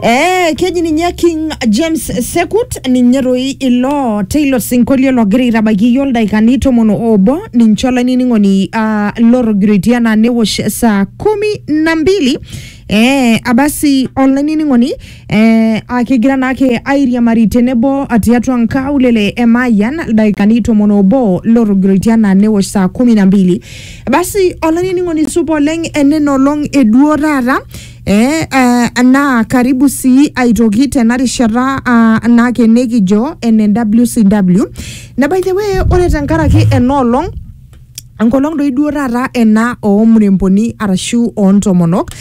Eh, keji ninye King James Sekut ninye toi ilo teilo sinkolio logira aitabaiki iyiook ildaikani tomon obo ninche olainining'oni ah, lorogirioitia naa newosh saa kumi na mbili eh, abasi olainining'oni eh, ah, kigira naake airiamari tenebo ah, tiatua nkaulele e Mayian ildaikani tomon obo lorogirioitia naa newosh saa kumi na mbili basi olainining'oni supa oleng enena olong eduo taata eh, eh, naa karibu sii aitoki tena rishata ah, naake nikijo ene WCW na by the way ore tenkaraki ena olong enkolong doi duo taata ena oomuremboni arashu oontomonok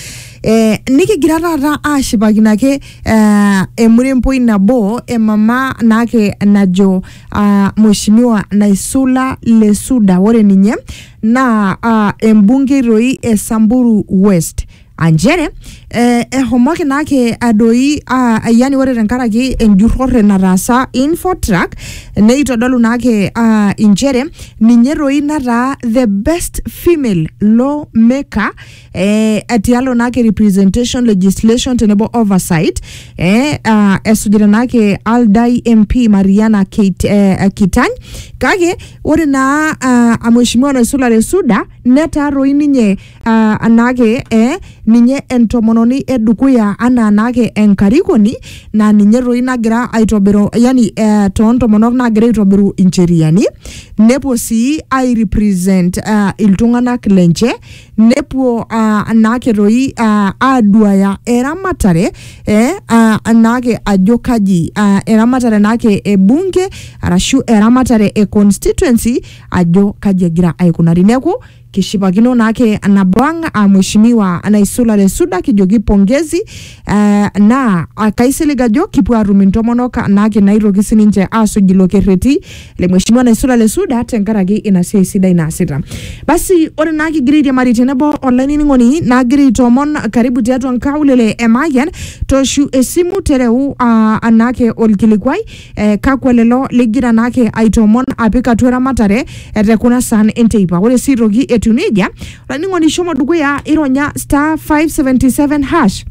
eh, nikigira taata aashipakino ake eh, emuremboi nabo emama naake najo uh, mheshimiwa Naisula Lesuda ore ninye naa uh, embungei doi e Samburu West anchere eh, ehomoki naake adoi ah, yani ore tenkaraki enjurrore nataasa Infotrack neitodolu naake ah, inchere ninye doi nataa the best female lawmaker eh, atialo naake representation legislation tenebo oversight eh, uh, esujita naake aldai mp mariana Keit, eh, kitany kake ore naa uh, amheshimiwa naisulare suda netaa toi ninye uh, naake eh, ninye entomononi edukuya anaa naake enkarikoni naa ninye toi nagira aitobiru yani eh, toontomonok nagira aitobiru incheriani nepuo sii airepresent uh, iltung'anak lenche nepuo uh, naake toi uh, aduaya eramatare eh, uh, naake ajo kaji uh, eramatare naake e bunge arashu eramatare e constituency ajo kaji egira aikunari neeku kishipakino naake nabo ang uh, mheshimiwa naisulare suda kijoki pongezi Eh, naa ah, kaisilig ajo kipuo aatum intomonok naake naitoki sininche aasuj ilo kerreti le mheshimiwa naisula le suda tenkaraki ina siai sidai naasita basi ore naa kigira airiamari tenebo olainining'oni naagira aitoomon karibu tiatua nkaulele e Mayian toshu esimu tereu ah, anaake olkilikuai eh, kakwa lelo ligira naake aitoomon apik atua eramatare eh, te kuna saan enteipa ore sii aitoki etiu nejia olainining'oni shomo dukuya ironya star 577 hash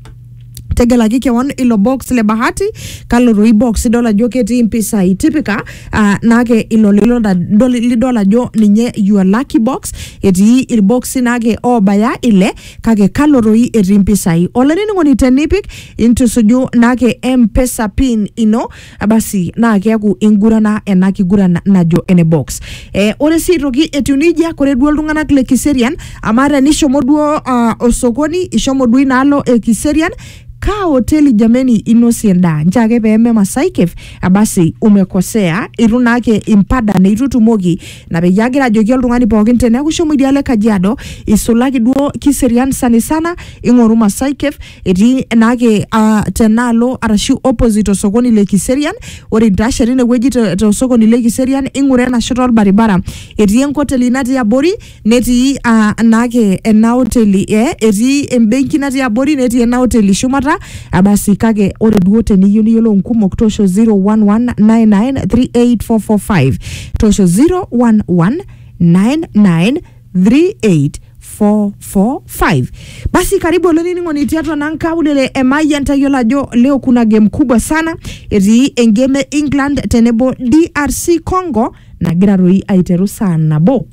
tegelaki kewon ilo box le bahati kalo toi box idol ajo ketii mpisai tipika uh, nake ilo lilo da- dol- lidol ajo ninye your lucky box etii irboxi nake obaya ile kake kalo toi etii mpisai olainining'oni tenipik intusuju nake mpesa pin ino abasi naa keaku ingurana ena kiguran najo ene box eh, ore sii aitoki etiu nejia kore duo iltung'anak le kiserian amaa tenishomo duo uh, osokoni ishomo duo inaalo e kiserian kaa hoteli jameni inosie endaa nchoo ake peeme Masai Cave abasi umekosea itu naake impada neitu itumoki na peyie agira ajoki oltung'ani pookin teneeku ishomo idialo e Kajiado isulaki duo kiserian sanisana ing'oru Masai Cave etii naake uh, tenaalo arashu opposite osokoni le Kiserian. Ore intashe tinewueji te- tosokoni le Kiserian ing'ura ena shoto olbaribara etii enkoteli natii abori netii uh, naake ena oteli eh, etii embenki natii abori netii ena oteli shumata Ah, basi kake ore duo teniyieu niyiolou nkumok toosho 0119938445 toosho 011993 38445 basi karibu olainining'oni tiatua naa nkaulele e Mayian tayiolo ajo leo kuna game kubwa sana etii engame e England tenebo DRC Congo nagira toi aiteru saa nabo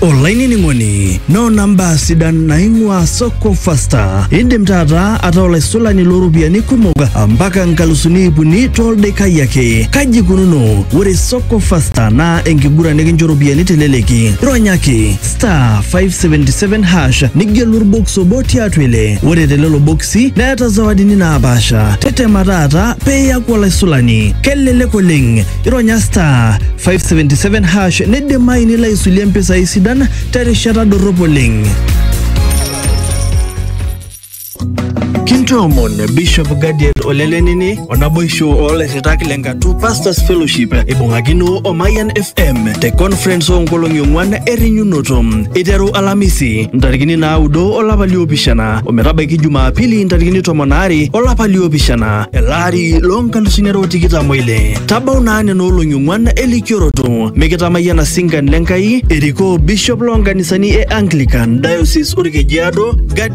olainining'oni noona mbaa sidan naing'ua soko fasta indim taata ataa olaisulani looropiyiani kumok mpaka nkalusuni ipuni toldaikai ake kaji ikununo ore soko Ko fasta naa enkiguran nikincho ropiyiani teleleki. Ronyaki star 577 hash nigelu orbox obo tiatua ile. Ore telelo boksi neeta zawadini naapaasha. Tetema taata pee iyaku olaisulani. Kelelek oleng. Ironya star 577 hash nidimayu nilo aisulie mpisai sidan terishata dorrop oleng. kintoomon bishop gadiel olelenini onaboisho oolairritak le nkatu pastors fellowship eibung'akino o mayan fm te conference oonkolong'i ong'uan errinyunoto iteru alamisi ntarikini naaudo olapa liopishana ometabaiki jumaapili ntarikini tomon aare olapa liopishana elaari loonkalusuni are otikitam oile tabau naa nena olong'i ong'uan elikioroto mikitamayiana sinkan le nkai erikoo bishop loonkanisani e anglican diocese orkejiado Gad-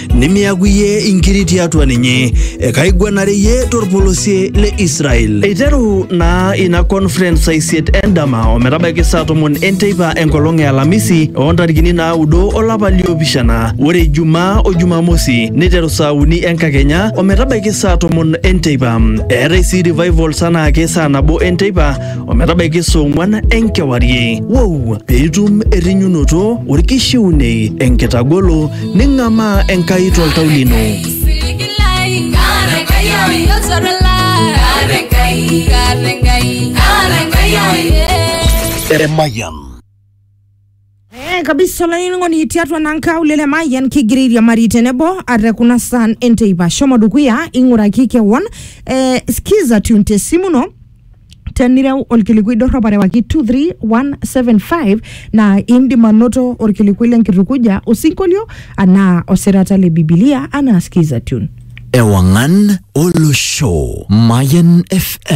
nimiaku iyie inkiri tiatua ninye, ekaiguanare iyie torpolosie le Israel. Eiteru naa ina conference saa isiet endama ometabaiki saa tomon enteipa enkolong e Alamisi oo ntarikini naaudo olapa liopishana. Ore Ijumaa o Jumamosi neiteru saa uni enkakenya ometabaiki saa tomon enteipa. Eetai sii revivals anaake saa nabo enteipa ometabaiki saa ong'wan enkewarie. Wou! Piitum errinyunoto, orkishiunei, enkitagolo, Ning'amaa Enkai toltau lino. Emayian. Eh, kabisa olainining'oni tiatua naa nkaulele emayian kigira airiamari tenebo ate kuna saan enteipa shomo dukuya ing'uraki kewon eh, skiza tune te simu ino tenireu olkilikui dorrop arewaki 23175 naa indim anoto olkilikui lenkitukuja osinkolio anaa osirata le bibilia anaa skiza tune Ewangan Olosho. Mayan FM.